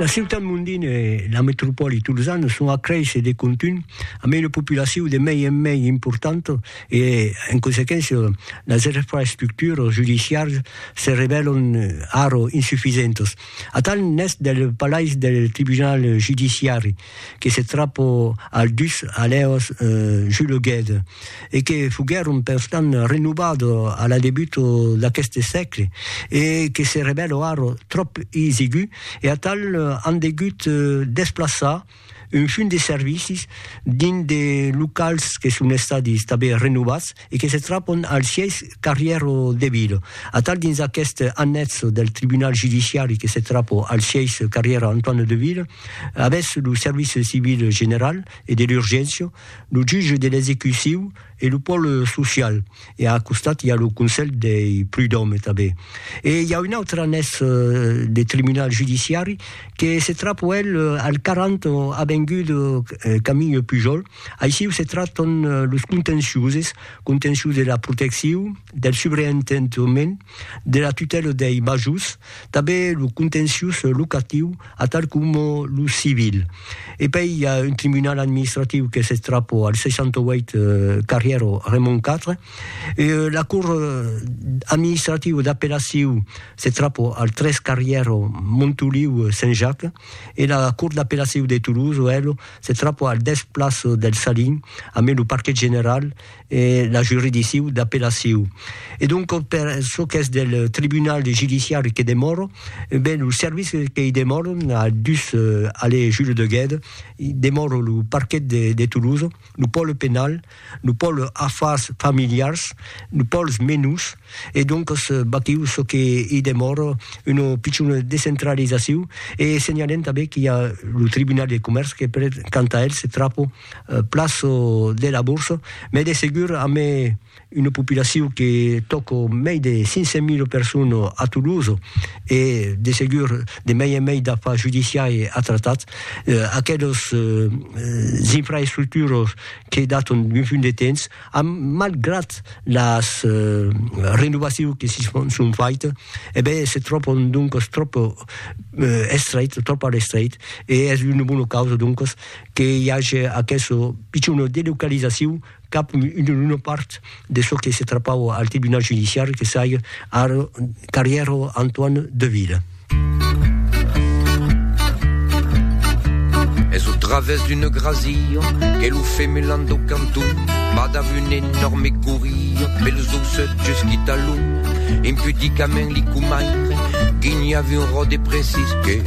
La ciutat mondina e la metropòli tolzana son a créisser de contunh amb una populacion de mei en mei importanta e, en consequéncia, las infraestructuras judiciaras se revèlan ara insufisentas. Atal n'es del palais del tribunal judiciari. que se trapo al dus alèos juleguèt e que foguèron perstant renovado a la debuto d'aqueste sègle e que se revèlo ara tròp isigu e atal an degut desplaçar un fum de servicis dins de locals que son estadi tanben renovats e que se trapon al sièis Carrièro de Vilo. Atal dins aqueste annètz del tribunal judiciari que se trapo al sièis Carrièro Antoine de Vilo, avètz lo service civil general e de l'urgéncia, lo jutge de l'execuciu e lo pòle social e a costat i a lo conselh dei prudòme tanben. E i a un autre annètz de tribunal judiciari que se trapo el al 40 avenguda Camille Pujol, Aixiu se tractan los contenciuses, contencius de la protecciu, del subreentendement, de la tutèla dei majors, tanben lo contencius locatiu, atal coma lo civil. E pei i a un tribunal administratiu que se trapò al 68 carrièra Raymond iv, e la cort administrativa d'apellaciu se trapò al 3 carrièra Montoliu Saint-Jacques. e la Cort d'Apelaciu de Toulouse, OL, se trapò al dètz Place del Salin, amé lo Parquet General e la Juridicciu d'Apelaciu. E donc per çò qu'es del Tribunal Judiciari que demòro, e ben lo serviç qu'i demòro a dus allée Jules de Guède, demòro lo Parquet de Toulouse, lo Pòle Penal, Nos pòls afars familiars, nos pòls menus, e doncas batiu çò que i demòra, una pichona descentralizaciu, e senhalem tanben qu'i a lo Tribunal de Comèrç que per quant a el se trapa plas de la borsa, mès de segur amé una populaciu que tòca mei de 500 mil personas a Toulouse, e de segur de mei en mei d'afars judiciais a tratar, aquelas infraestructuras qu'ei d'aton un punt de temps, am, malgrat las renovaciu que si son fait, e ben se tròpon doncos tròp estreit, tròp a l'estreit, e es una bona causa doncos que i age aqueso pichon delocalizaciu cap una part de çò que se trapava al tribunal judiciari que sai ar carrièro Antoine Deville. Es au travès d'una grasia que lo femelan do canton va dav un enorme coria pelos aussets just qui talon impudicament li comaire guinhava un ròde precis que